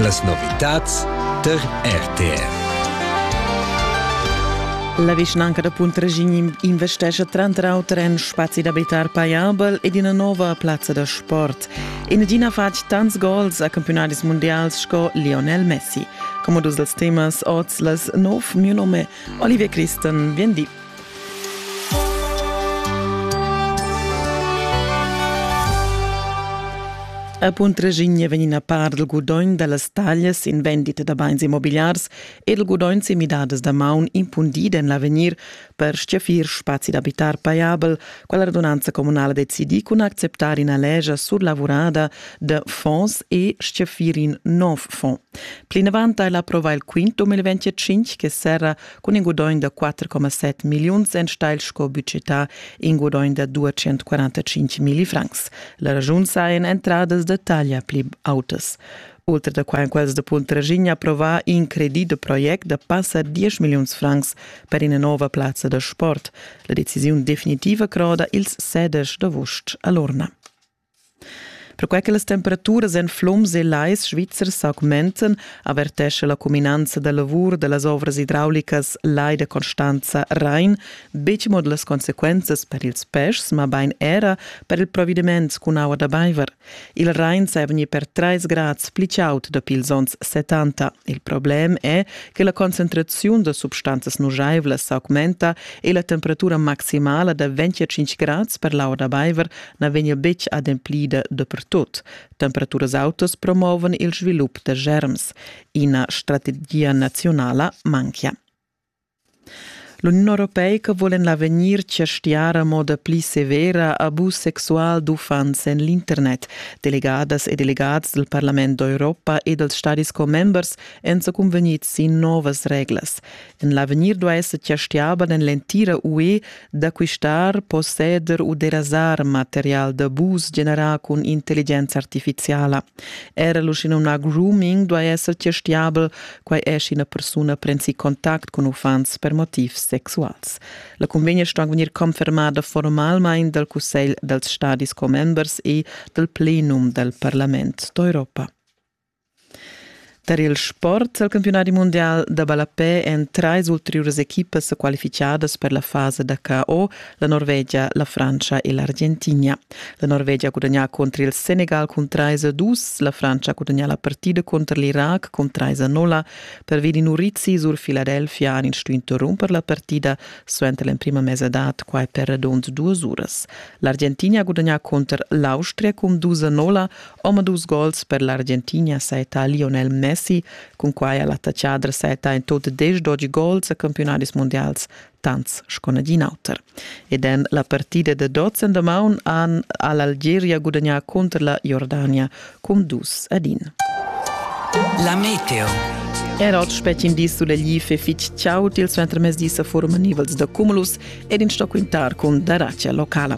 Las novitads tar RTF. La vischnanca da Puntraschign investescha tranter auter en spazi d'abitar paiabel ed ina nova plazza da sport. In adina fatg tants gols a campionadis mundials sco Lionel Messi. Come dus dels temas oz las nov, mio nome Olivia Christen, vien di. A Puntraschigna vegn ina part dal gudogn da las taglias in vendita da bains immobigliars e dal gudogn sin midadas da maun impundida en l'avegnir per stgaffir spazi d'abitar paiabel, quella radunanza communala decidi cun acceptar ina legia surlavurada da fonds e stgaffir in nov fond. Plinavant ha ella approvà il quint 2025 che serra cun in gudogn da 4,7 milliuns enstagl sco budgetà in gudogn da 245 milli francs. La ragiun sa en entradas da taglia pli autas. Oltre da quai quels da Puntraginha approvà in credit da project da passa 10 milliuns francs per ina nova plazza da sport. La decisiun definitiva croda ils sedesch d'avust a Lorna. Perquai che las temperaturas en flums e lais svizzers s'augmentan, avertescha la cuminanza da lavur da las ovras idraulicas Lai da Constanza Rain betg mo las consequenzas per ils peschs, mabain era per il provediment cun aua da baiver. Il Rain sai vegnir per 3 grads pli chaud dapi ils onns 70. Il problem è che la concentraziun da substanzas nujaivlas s'augmenta e la temperatura maximala da 25 grads per l'aua da baiver na vegnia betg ademplida dapertut. Temperaturas autas promovan il svilup da germs. Ina strategia nazionala manchia. L'Union europeica vul en l'avegnir chastiar a moda pli severa abus sexual d'uffants en l'internet. Delegadas e delegats del Parlament d'Europa e dels stadis commembers èn sa cunvegnids sin novas reglas. En l'avegnir duai esser chastiaba en l'entira UE d'acquistar, posseder u derasar material d'abus generà cun intelligenza artificiala. Era l'uschenumnà grooming duai esser chastiabel, quai è sch'ina persuna prensi contact cun uffants per motivs sexuals. La cunvegna sto vegnir confermada formalmain dal Cussegl dals stadis commembers e dal plenum dal Parlament d'Europa. Tar il sport ha il campiunadi mundial da ballapè en trais ulteriuras equipas qualificadas per la fasa da KO la Norvegia, la Frantscha e l'Argentina. La Norvegia ha gudagnà contro il Senegal cun 3-2, la Frantscha ha gudagnà la partida contro l'Irac cun 3-0. Pervi di Nurizzi sur Philadelphia han ins stuì interromper la partida suenter l'emprima mesadad, quai per radund duas uras. L'Argentina ha gudagnà contro l'Austria cun 2-0 Omadus gols per l'Argentina saetta Lionel Messi, cun quai ha l'attachadra saetta in tot desch-dogi gols a campiunadis mundials tants sco nagin auter. Ed en la partida da dots en damaun han ha l'Algeria gudagnà cunter la Jordania cun dus ad in. La meteo. Er oz spetgin dis sulla glif e fitg ciao til suentermezdi sa forma nivels da cumulus ed in sto quintar cun daracia locala.